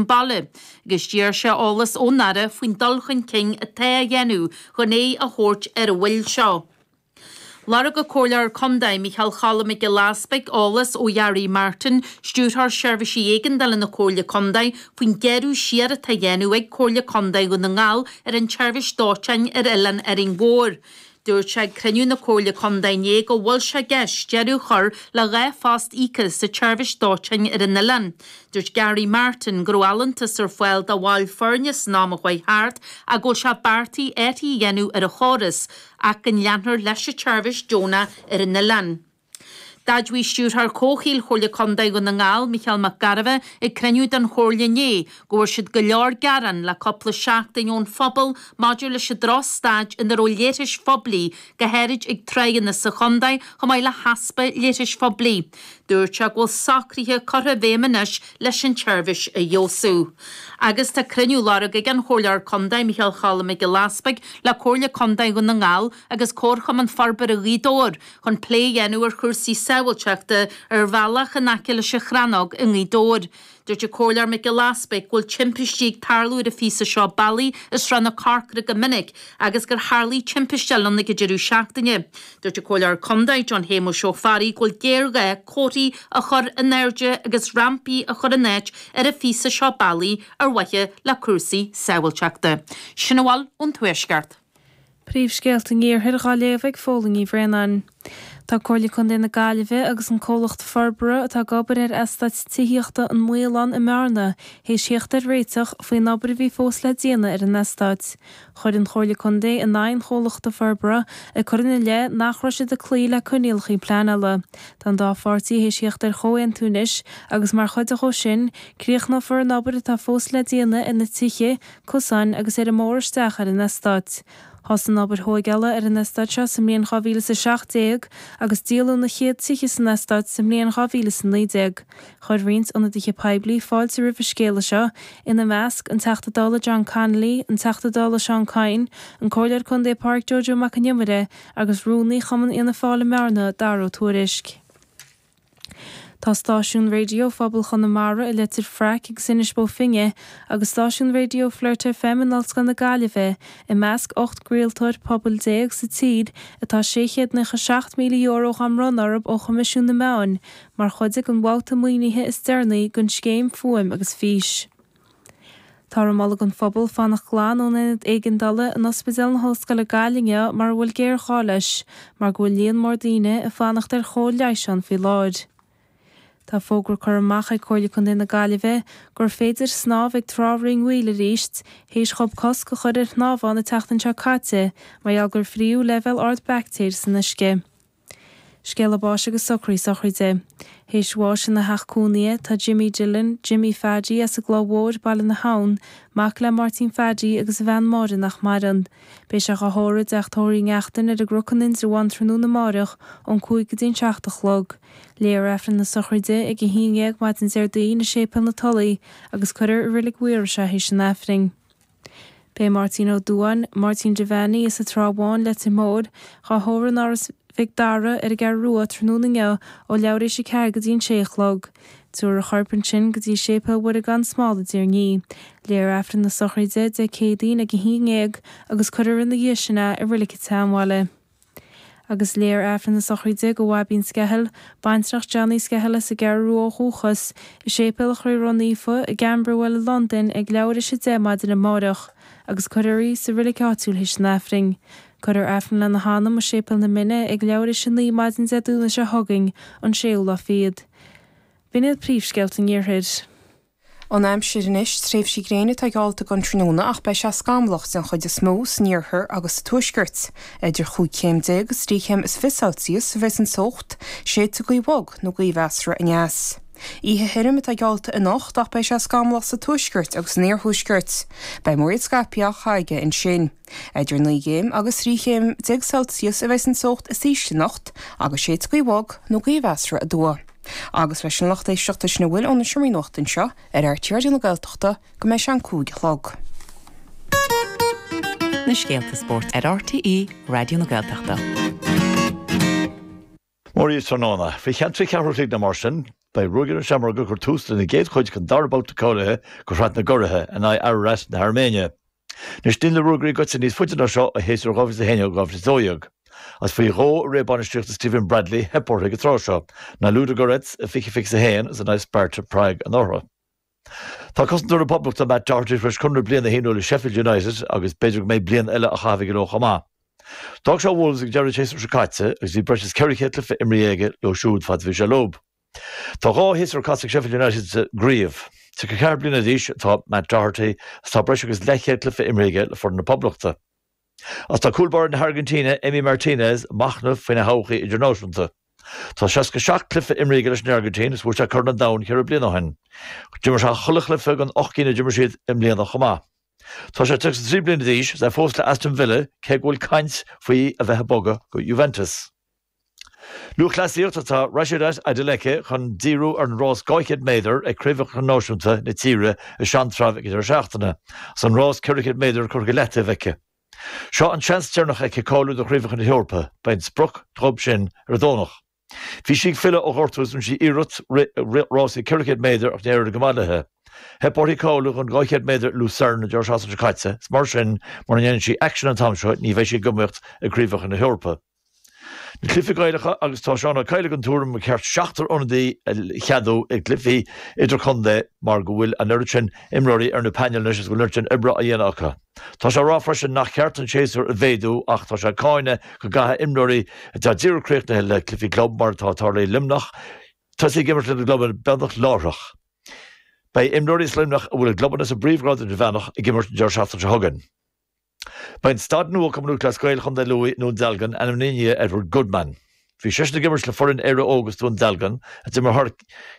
mbaile, agus d'iarr sé eolas ón Aire faoin dul chun cinn atá á dhéanamh chun aghaidh a thabhairt ar an bhfadhb seo. Lorg an Comhairleoir Contae, Micheál Cholm Mac Giolla Easpaig, eolas ó Gharry Martin, Stiúrthóir Seirbhísí Éigeandála na Comhairle Contae, faoin gearradh siar atá á dhéanamh ag Comhairle Contae Dhún na nGall ar an tseirbhís dóiteáin ar Oileán Árainn Mhór. Dúirt sé ag cruinniú na Comhairle Contae inné go bhfuil sé i gceist deireadh a chur le dhá phost íocaithe sa tseirbhís dóiteáin ar an oileán. Dúirt Garry Martin go raibh allúntas ar fáil do bhaill foirne san am a chuaigh thart ach go bhfuil sé beartaithe athruithe a dhéanamh ar an chóras ach go leanfar leis an tseirbhís deonach ar an oileán. D'admhaigh Stiúrthóir Comhshaoil Chomhairle Contae Dhún na nGall, Micheál Mac Gairbheith, ag cruinniú den Chomhairle inné go bhfuair siad go leor gearán le cúpla seachtain ón phobal maidir leis an droch staid ina raibh leithris phoiblí, go háirid ag tránna sa chontae, chomh maith le heaspa leithris phoiblí. Dúirt sé go bhfuil socruithe curtha i bhféidhm anois leis an tseirbhís a fheabhsú. Agus tá cruinniú á lorg ag an Chomhairleoir Contae, Micheál Cholm Mac Giolla Easpaig le Comhairle Contae Dhún na nGall agus Comharchumann Forbartha Ghaoth Dobhair chun plé a dhéanamh ar chúrsaí sábháilteachta ar an bhealach in aice leis an Chrannóg i nGaoth Dobhair. Dúirt an Comhairleoir Mac Giolla Easpaig go bhfuil timpistí ag tarlú ar an phíosa seo bealaí i Srath na Corcra go minic agus gur tharlaigh timpiste eile ann ag an deireadh seachtaine. Dúirt an Comhairleoir Contae John Shéamuis Ó Fearraigh go bhfuil géarghá comharthaí a chur in airde agus rampaí a chur in áit ar an phíosa seo bealaí ar mhaithe le cúrsaí sábháilteachta. Sin a bhfuil ón Tuaisceart. Príomhscéalta an Iarthair dhá léamh ag Fódhla Ní Bhraonáin. Tá Comhairle Contae na Gaillimhe agus an comhlacht forbartha atá ag obair ar eastát tithíochta An Maolán i mBearna théis thíocht ar réiteach faoin obair a bhí fós le déanamh ar an eastáit. Chuaigh an Chomhairle Contae in aghaidh an chomhlachta forbartha ag cur ina leith nach raibh siad ag cloí le coinníollacha pleanála. Tá an dá pháirtí théis thíocht ar chomhaontú anois agus mar chuid dhó sin, críochnófar an obair atá fós le déanamh ar na tithe, cosáin agus ar an mbóthar isteach ar an eastát. Thosaigh an obair thóigeála ar an eastát seo sa mbliain 2017 agus díoladh na chéad tithe san eastát sa mbliain 2019. Chuir roinnt ionadaithe poiblí fáilte roimh an scéala seo, ina measc, an Teachta Dála John Connolly, an Teachta Dála Seán Canney, an Comhairleoir Contae Pádraig Joe Joe Mac an Iomaire agus Rúnaí Chumann Fhianna Fáil i mBearna, Daragh Ó Tuairisc. Tá stáisiún raidió phobal Chonamara i Leitir Fraic agus Inis Bó Finne agus stáisiún raidió Flirt FM in Ollscoil na Gaillimhe i measc ocht gcraoltóir pobail déag sa tír a bhfuil €697,000 dhá bhronnadh orthu ó Choimisiún na Meán mar chuid den bhabhta maoinithe is deireanaí den scéim Fuaim agus Fís. Táthar ag moladh don phobal fanacht glan ón Aonad Éigeandála in Ospidéal na hOllscoile Gaillimh mara bhfuil géarghá leis mar go bhfuil líon mór daoine ag fanacht ar chóir leighis ann faoi láthair. Tá fógra curtha amach ag Comhairle Contae na Gaillimhe gur féidir snámh ag Trá Rinn Mhaoil arís théis dhóibh cosc a chur ar shnámh ann an tseachtain seo caite mar gheall gur fríothadh leibhéal ard baictéir san uisce. Scéala báis agus socraí sochraide. Théis bháis ina theach cónaithe, atá Jimmy Dillon, Jimmy Phaidí, as an gCloich Mhóir, Baile na hAbhann, mac le Máirtín Phaidí agus a bhean Máire nach maireann. Beidh sé á thórramh i dTeach Tórraimh Uí Neachtain ar an gCnoc in Indreabhán tráthnóna amárach ón cúig go dtí an seacht a chlog. Léifear Aifreann na Sochraide ag a haon dhéag maidin Déardaoin i Séipéal na Tulaí agus cuirfear i Reilig Mhaorais é théis an Aifrinn. Beidh Máirtín Ó Duáin, Máirtín Devaney, as an Trá Bháin, Leitir Móir, dhá thórramh in Áras Mhic Dara ar an gCeathrú Rua tráthnóna inniu ó leathuair théis a 4 go dtí an 6 a chlog. Tabharfar a chorp ansin go dtí Séipéal Mhuire gan Smál i dTír Ní. Léadh Aifreann na sochraide Dé Céadaoin ag a haon dhéag agus cuirfear ina dhiaidh sin é i Reilig an tSeanbhaile. Agus léifear Aifreann na Sochraide do Bhaibín Skehill, baintreach John Uí Skehill as an gCeathrú Rua ó dhúchas, i Séipéal Chroí Ró-Naofa i gCamberwell i Londain ag leathuair théis a deich maidin amáireach, agus cuirfear í sa reilig áitiúil théis an Aifrinn. Cuirfear Aifreann lena hanam i Séipéal na Minne ag leathuair théis a naoi maidin Dé Domhnaigh seo chugainn, an séú lá fichead. B'in iad príomhscéalta an Iarthair. An aimsir anois, tréimhsí gréine atá geallta don tráthnóna ach beidh sé scamallach den chuid is mó san iarthar agus sa tuaisceart. Idir 15 céim agus 3 chéim is fiche Celsius a bheas an teocht, séidfidh gaoth bhog nó gaoth mheasartha aneas. Oíche thirim atá geallta anocht ach beidh sé scamallach sa tuaisceart agus san iarthuaisceart. Beidh múraíl scaipthe acu ansin. Idir naoi gcéim agus trí chéim déag Celsius a bheas an teocht is ísle anocht agus séidfidh gaoth bhog nó gaoth mheasartha aduaidh. Agus leis sin a lucht éisteachta sin a bhfuil ón seomra nuachta anseo ar RTÉ Raidió na Gaeltachta go mbeidh sé an cúig a chlog. na scéalta spóirt ar RTÉ Raidió na Gaeltachta. Mora daoibh tráthnóna. Faoi cheann trí ceathrú an chloig nó mar sin, beidh Ruagairí na Seamróg ag cur tús lena gcéad chluiche den dara babhta cáilithe do Shraith na gCuradh in aghaidh Ararat na hAirméine. Anois níl na Ruagairí gaibhte níos faide ná seo ó shéasúr 2011 2012. Is faoi dhó i ré bainistíochta Stephen Bradley, theip orthu ag an tráth seo, in aghaidh Ludogorets i bhfiche fiche's a haon is in aghaidh Sparta Prague anuraidh. Tá cosantóir na Poblachta, Matt Doherty, tar éis conradh bliana a shíniú le Sheffield United agus b'fhéidir go mbeidh bliain eile á chaitheamh aige leo chomh maith. D'fhág sé Wolves ag deireadh an tséasúir seo caite agus bhí breis is 400 cluiche imeartha aige leo siúd fad a bhí sé leo. Tá dhá shéasúr caite ag Sheffield United sa gcraobh. 34 bliana d'aois atá Matt Doherty agus tá breis agus leathchéad cluiche imeartha aige le foireann na Poblachta. Agus tá cúl báire na hAirgintíne, Emi Martinez, ag machnamh faoina thodhchaí idirnáisiúnta. Tá 67 cluiche imrithe aige leis an Airgintín agus bhuaigh sé Corn an Domhain ceithre bliana ó shin. D'imir sé chuile chluiche den ocht gcinn a d'imir siad i mbliana chomh maith. Tá sé 33 bliana d'aois agus é fós le Aston Villa cé go bhfuil caint faoi a bheith ag bogadh go Juventus. Lúthchleasaíocht is tá Rhasidat Adeleke chun díriú ar an rás 200 méadar ag Craobhacha Náisiúnta na tíre i Seantrabh ag an deireadh seachtaine agus an rás 400 méadar curtha go leataobh aici. Seo an seans deireanach aici cáiliú do Chraobhacha na hEorpa, beidh an sprioc dhóibh sin ar an Domhnach. Bhí sí ag filleadh ó ghortú agus rinne sí iarracht rith rásaí 400 méadar ach níor éirigh go maith léi. Theip uirthi cáiliú don 200 méadar i Lucerne an deireadh seachtaine seo caite agus mar sin, mura ndéanann sí aicsean an t-am seo, ní bheidh sí ag iomaíocht ag Craobhacha na hEorpa. na Cluichí Gaelacha agus tá Seán Ó Cadhla den tuairim gur cheart seachtar ionadaí a cheadú i gcluichí idirchontae mar go bhfuil an oiread sin imreoirí ar na painéil anois agus go bhfuil an oiread sin oibre á dhéanamh acu. Tá sé á rá freisin nach cheart an séasúr a mhéadú ach tá sé ag cáineadh go gcaithfidh imreoirí atá díreach críochnaithe le cluichí club, mar atá tarlaithe i Luimneach, tosaí ag imirt lena gclubanna beagnach láithreach. Beidh imreoirí as Luimneach a bhfuil a gclubanna sa bpríomhghrád idirmheánach ag imirt an deireadh seachtaine seo chugainn. Beidh staid nua Chumann Lúthchleas Gael Chontae Lú i nDún Dealgan ainmnithe i ndiaidh Edward Goodman. Bhí seisean ag imirt le foireann Éire Óg as Dún Dealgan, a d'imir thar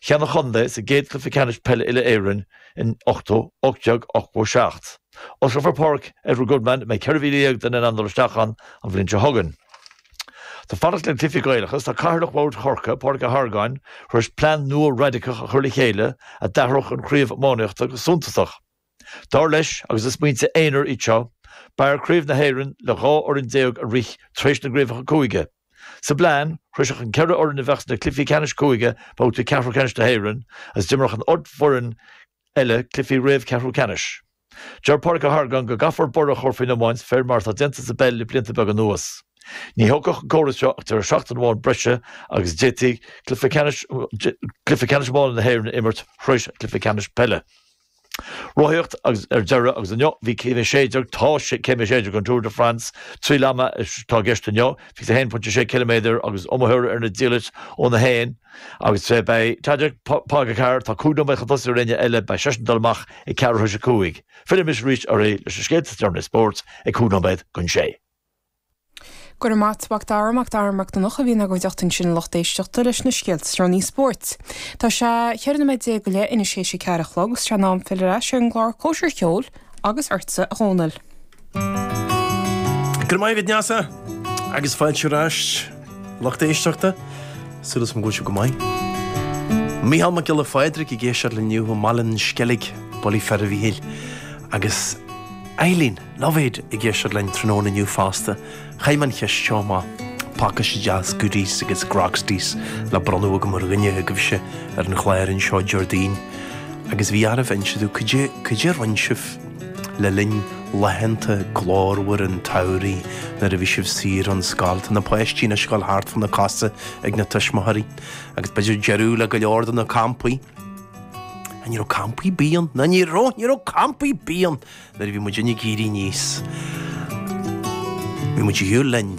cheann an chontae sa gcéad chluiche ceannais peile uile-Éireann in 1887. Osclófar Páirc Edward Goodman, a mbeidh 14,000 duine in ann dul isteach ann, an bhliain seo chugainn. Tá fanacht le cluichí Gaelacha is tá Cathaoirleach Bhord Chorcaí, Pádraig Ó hArgáin, tar éis plean nua raidiceach a chur le chéile a d'athródh an chraobh iománaíochta go suntasach. Dar leis, agus is smaointe aonair iad seo, b'fhearr Craobh na hÉireann le dhá fhoireann déag a rith tar éis na gCraobhacha Cúige. Sa bplean, shroisfeadh an ceithre fhoireann a bheadh sna cluichí ceannais cúige babhta ceathrú ceannais na hÉireann agus d'imreodh an ocht bhfoireann eile cluichí réamh-cheathrú ceannais. Deir Pádraig Ó hArgáin go gcaithfear borradh a chur faoin iomáint faoi mar atá déanta sa bpeil le blianta beaga anuas. Ní thógfadh an córas seo ach deireadh seachtaine amháin breise agus d'fhéadfaí cluiche ceannais iomána na hÉireann a imirt tar éis an chluiche ceannais peile. Rothaíocht ar deireadh agus inniu bhí Céim 16, tá Céim 16 den Tour de France, triail ama atá i gceist inniu, 21.6 km agus iomaitheoirí ar na diallaití ón 1. agus beidh Tadej Pogačar, atá 5 nóiméad chun tosaigh ar éinne eile, beidh seisean ag dul amach ag ceathrú tar éis a 5. Fillfidh mise arís oraibh leis na scéalta is deireanaí spóirt ag 5 nóiméad chun a sé. Go raibh maith agat Mac Dara, Mac Dara Mac Donncha, a bhí inár gcuideachta ansin lucht éisteachta leis na scéalta is deireanaí spóirt. Tá sé ceithre nóiméad déag go leith, anois tar éis a ceathair a chlog, is tá sé in am filleadh ar ais ar an gclár Cóisir Cheoil agus ortsa, a Dhónaill. Go raibh maith agat Neasa agus fáilte ar ais lucht éisteachta, súil agam go bhfuil sibh go maith. Micheál Mac Giolla Phádraig ag éisteacht linn inniu ó Bhaile an Sceilg, bulaí fir a Mhichíl agus Eileen. Lovett ag éisteacht linn tráthnóna inniu fosta. Chaith mé an cheist seo amach, tá pacáiste deas goodies agus grogsties le bronnadh agam ar dhuine agaibhse ar an chlár anseo Déardaoin, agus bhí oraibh inse domh cad é cad é a rinn sibh le linn laethanta glórmhara an tsamhraidh nuair a bhí sibh saor ón scoil. Tá na páistí ina scoil thart fá na cosa ag na tuismitheoirí, agus b'fhéidir deireadh le go leor de na campaí. Ní raibh campaí ar bith ann, ná ní raibh, ní raibh campaí bídh ann! Nuair a bhí muidinne ag éirí aníos, bhí muid ar shiúl linn.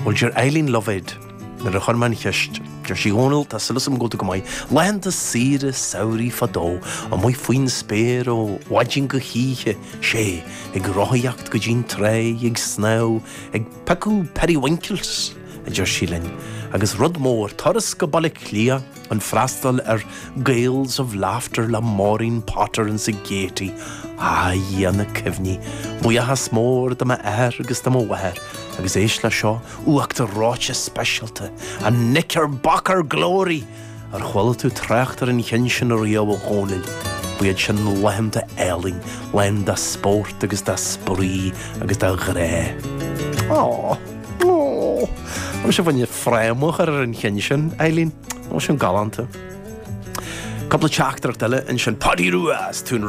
Bhuel, deir Eileen Lovett, nuair a chuir mé an cheist, deir sí, Dhónaill, tá súil agam go bhfuil tú go maith, laethanta saoire samhraidh fadó, amuigh faoin spéir ó mhaidin go hoíche, sé, ag rothaíocht go dtí'n tráigh, ag snámh, ag piocadh periwinkles, a deir sí linn, agus rud mór, turas go Baile Átha Cliath. An freastal ar 'Gaels of Laughter' le Maureen Potter in sa Gaiety, a Dhia na cuimhní! Buíochas mór do m'athair agus do mo mháthair, agus éist le seo, uachtar reoite speisialta, a knickerbocker glory! Ar chuala tú trácht ar an cheann sin ariamh a Dhónaill? Ba iad sin laethanta álainn, lán de spórt agus de spraoi agus de ghrá. Aww. Ó! Seo bhain fráma a chur ar an cheann sin, a Eileen. Ó, sin galánta. Cúpla teachtaireacht eile ansin. Páidí Rua as Tún Ró.